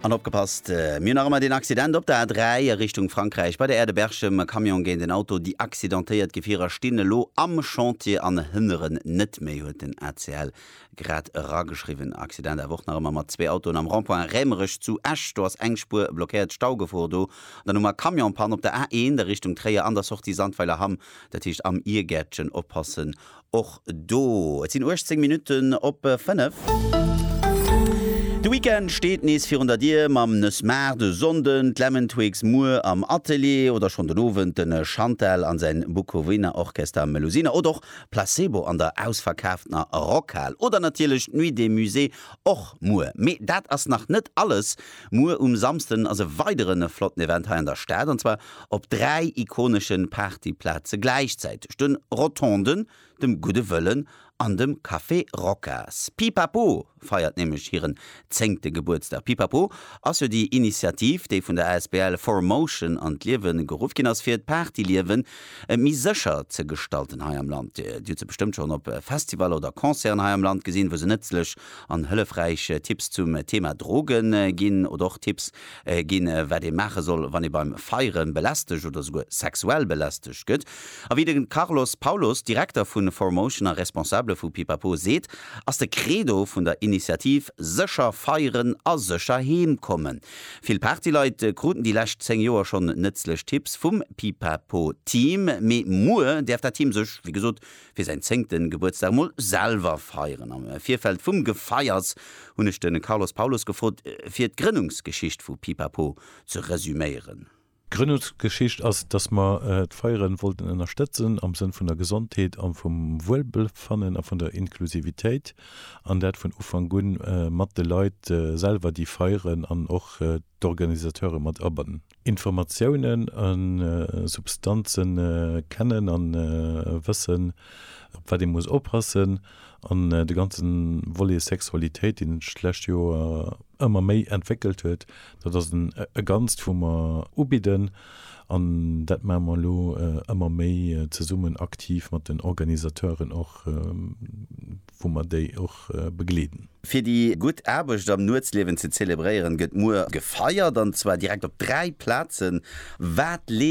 An opgepasst, mir hunn nach ëmmer deen Accident op der A3 a Richtung Frankräich bei der Aire de Berchem, e Camion géint en Auto, déi accidentéiert Gefierer stinn elo am Chantier an hënneren net méi, huet den ACL grad erageschriwwen. Accident awer och nach ëmmer mat zwee Autoen am Rond-point Rämerech zu Esch, do ass eng Spuer blockéiert, Staugefor do. An dann hu mer Camionspanne op der A1 a Richtung Tréier an der Sortie Sandweiler Hamm, dat heescht am Iergäertchen, oppassen och do. Et sinn 18 Minutten op 5. De Weekend steet nees virun der Dier, mam Nës Mar de Sonnden, d'Lemontwigs muer am Atelier oder schonn den Owend de Chantal a säin Bukowina Orchester Melusina oder och Placebo an der ausverkaaftener Rockhal oder natierlech d'Nuit des Musées och muer. Mee dat ass nach net alles, muer um Samsden ass e weideren flotten Event hei an der Stad an zwar Op dräi ikonesche Partyplaze gläichzäiteg, de Rotonden, dem Gudde Wëllen an dem Café Rocas. Pipapo feiert nämlech hiren zéngte Gebuertsdag. Pipapo ass jo déi Initiativ, déi vun der asbl Four Motion an d'Liewe geruff ginn ass, fir d'Partyliewe méi sécher ze gestalten hei am Land. Dir hutt se bestëmmt schonn op Festivaller oder Concerten hei am Land gesinn, wou se nëtzlech an hëllefräich Tipps zum Thema Droge ginn oder och Tipps, ginn, wat ee maache soll, wann ee beim Feiere belästegt oder souguer sexuell belästegt gëtt. A wéi de Carlos Paulos, Direkter vu Four Motion a Responsabele vu Pipapo seet, ass de Credo vun der Initiativ sécher feieren a sécher heem kommen. Vill Partyleit kruten déi lescht 10 Joer schonn nëtzlech Tipps vum Pipapo-Team, mee muer däerf dat Team sech, wéi gesot, fir säin zéngten Gebuertsdag mol selwer feieren. Am Virfeld vum Gefeiers hunn ech de Carlos Paulus gefrot fir d'Grënnungsgeschicht vu Pipapo ze resüméieren. D'Grënnungsgeschicht ass, dass mer d'Feieren wollten ënnerstëtzen am Sënn vun der Gesondheet a vum Wuelbefannen a vun der Inklusivitéit an dat vun Ufank un mat de Leit selwer déi feieren an och d'Organisateure mat abannen. Informatiounen a Substanze kennen a wëssen, op wat ee muss oppassen, an de ganze Volet Sexualitéit, deen sech d'lescht Joer ëmmer méi entwéckelt huet, dat ass e Ganzt, wou mer ubidden. An dat maache mer elo ëmmer méi zesummen aktiv mat den Organisateuren och. wou mer déi och begleeden. Fir déi gutt Aarbecht am Nuetsliewen ze zelebréieren, gëtt muer gefeiert, an zwar direkt op dräi Plazen. Wat.